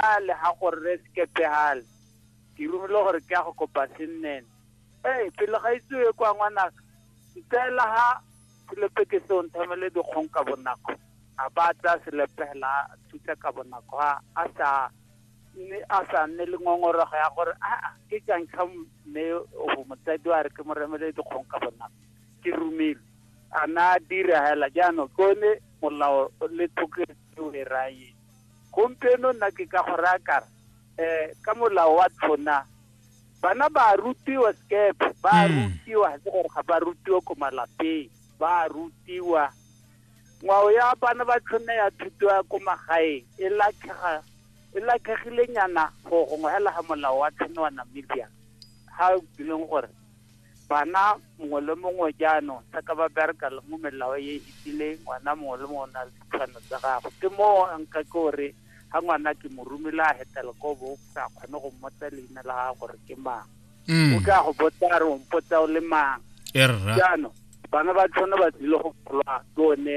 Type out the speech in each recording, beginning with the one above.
a le ga go rre sekepegale ke romile gore ke ya go kopa sennene ee pele ga itsewe kwa ngwanaka ntseela ga selepe ke se o nthamele dikgong ka bonako a ba tsa selepe fela a thuta ka bonako a a sa mme a sa nne le ngongorego ya gore a ke jang ka mme o motsadi wa re ke mo remele dikgong ka bonako ke romile a na dira fela jaanong ke one molao le thoketseo e rayeng gompieno nna ke ka go raya kara um ka molao wa tlhona bana ba rutiwa skepe ba hmm. rutiwa ga se gore ga ba rutiwa ko malapeng ba rutiwa ngwao ya bana ba tlhona ya thuto ya ko magaeng e latlhega e latlhegilenyana go gongwe hela ga molao wa tlhona wa namibia ga e leng gore Bana mongwe le mongwe jaanong jaaka ba bereka le mo melao e e tsileng ngwana mongwe le mongwe o na le ditshwanelo tsa gagwe. Ke moo a nka ke gore ga ngwana ke mo romile a hetela ko bo sa kgone go mmotsa leina la gagwe gore ke mang. Mm. O ka go botsa a re o mpotsa o le mang. Erra. Jaanong bana ba tshwane ba tlile go golwa ke one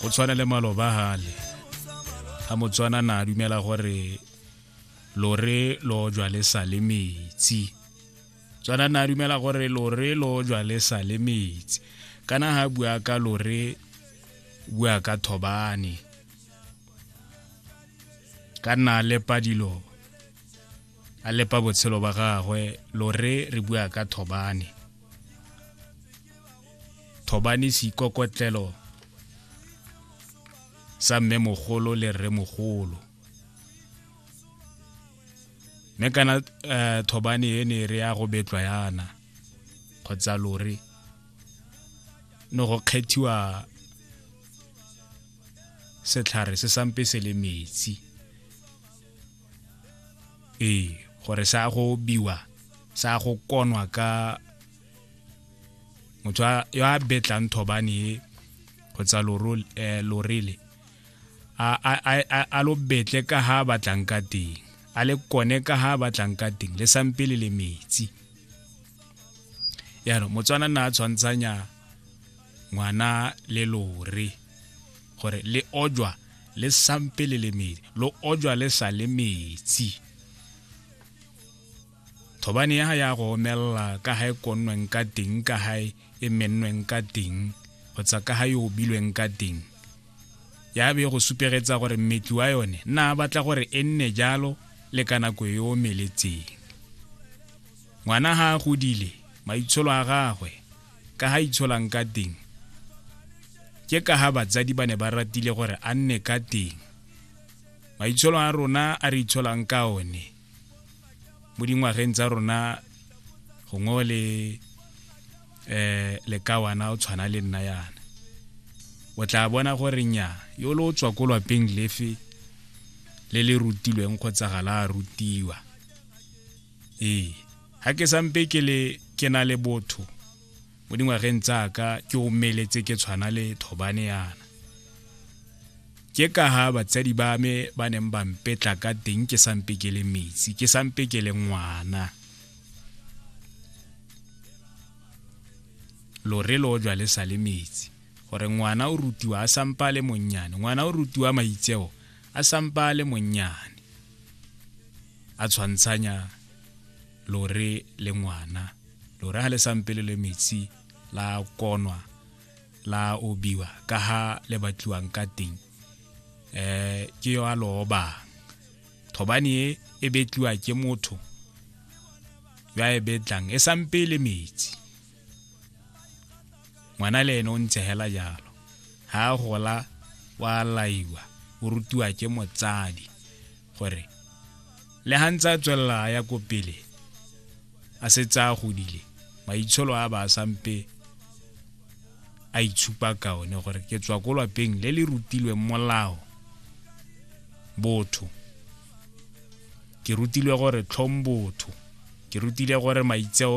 go tshwana le maloba gale ga motswana na dumela gore lore lo jwa le sa le metsi tswana na dumela gore lore lo jwa le sa le metsi kana ha bua ka lore bua ka thobane ka nna lepa dilo a lepa botshelo ba gagwe lore re bua ka thobane thobane seikokotlelo sa mme mogolo le rre mogolo mme kana um thobane e ne re ya go betlwa yana kgotsa lore ne go kgethiwa setlhare se sampe se le metsi ee gore sa go biwa sa go konwa ka motho yo a betlang thobane e go tsa eh, lorele a lo betle ka ha a batlang ka teng a le kone ka ha a batlang ka teng le sampele le metsi yaanong motswana na a tshwantshanya ngwana le lore gore le ojwa le sampe le le medi lo ojwa le sa le metsi thobane ya ya go omelela ka ga e konnweng ka teng ka ga e mennweng ka teng kgotsa ka ga e obilweng ka teng ya be go supegetsa gore mmetli wa yone na batla gore e nne jalo le ka nako e omeletseng ngwana ga a godile maitsholo a gagwe ka ga itsholang ka teng ke ka ga batsadi ba ne ba ratile gore a nne ka teng maitsholo a rona a re itsholang ka one mo dingwageng tsa rona gongwe le um lekawana o tshwana le nna yana o tla bona gore nya yo le o tswa ko lwapeng lefe le le rutilweng kgotsa ga la rutiwa ee ga ke sampe ke le ke na le botho mo dingwageng tsaka ke omeletse ke tshwana le thobane yana ke ka ha batsadi ba me ba neng ba mpetla ka teng ke sampe ke le metsi ke sampe ke le ngwana lore lo jwa le sa le metsi gore ngwana o rutiwa a sampa le monnyane ngwana o rutiwa maitseo a sampa a le monnyane a tshwantshanya lore le ngwana lore ga le sampe le le metsi la konwa la obiwa ka ha le batliwang ka teng um ke yo a lo obang thobane e e betliwa ke motho yo a e betlang e sampe le metsi ngwana le ene o ntse hela jalo ha a gola wa laiwa o rutiwa ke motsadi gore le ha ntse a tswelela a ya ko pele a setse a godile maitsholo a ba sampe a itshupa ka one gore ke tswa ko lapeng le le rutilweng molao botho ke rutilwe gore tlhong botho ke rutile gore maitseo